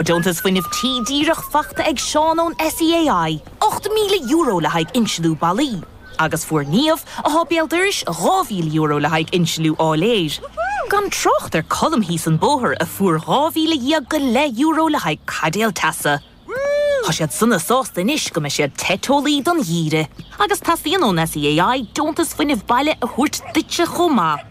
Deontas Fuinnimh Tí díreach faighte ag Seán ón SEAI, €8,000 le haghaidh insliú ballaí, agus fuair Niamh, atá béal dorais, €2,000 le haghaidh insliú áiléir. Gan trácht ar Colm thíos an bóthar a fuair dhá mhíle dhéag go leith euro le haghaidh caidéal teasa. Tá siad sona sásta anois go mbeidh siad te teolaí don gheimhreadh. Agus teastaíonn ón SEAI deontas fuinnimh baile a thabhairt duitse chomh maith.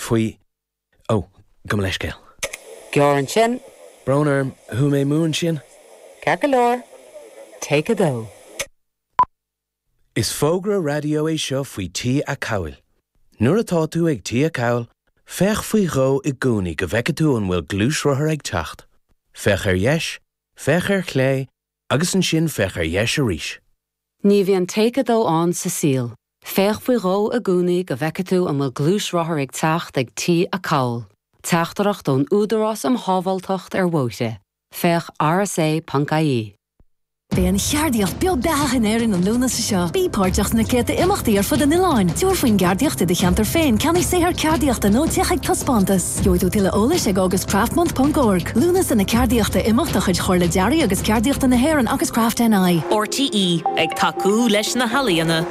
faoi. Ó, gabh mo leithscéal. Gearr ansin. Brón orm, shúigh mé mó ansin. Ceart go leor, Take 2. Is fógra raidió é seo faoi T-acomhail. Nuair atá tú ag T-acomhal, féach faoi dhó i gcónaí go bhfeicfidh tú an bhfuil gluaisrothar ag teacht. Féach ar dheis, féach ar chlé, Agus ansin féach ar dheis arís. Ní bhíonn Take 2 ann sa saol. Féach faoi dhó i gcónaí go bhfeicfidh tú an bhfuil gluaisrothar ag teacht ag T-acomhal. Teachtaireacht ón Údarás um Shábháilteacht ar Bhóithre, féach rsa ponc ie. Beidh an cheardaíocht beo beathach in Éirinn an Lúnasa seo. Bí páirteach sna céadta imeachtaí ar fud an oileáin. Tabhair faoin gceardaíocht i do cheantar féin, ceannaigh saothar ceardaíochta nó téigh chuig taispeántas. Gheobhaidh tú tuilleadh eolais ag augustcraftmonth ponc org, Lúnasa na Ceardaíochta imeacht de chuid Chomhairle Dearaidh agus Ceardaíochta na hÉireann agus Craft NI. RTÉ ag tacú leis na healaíona.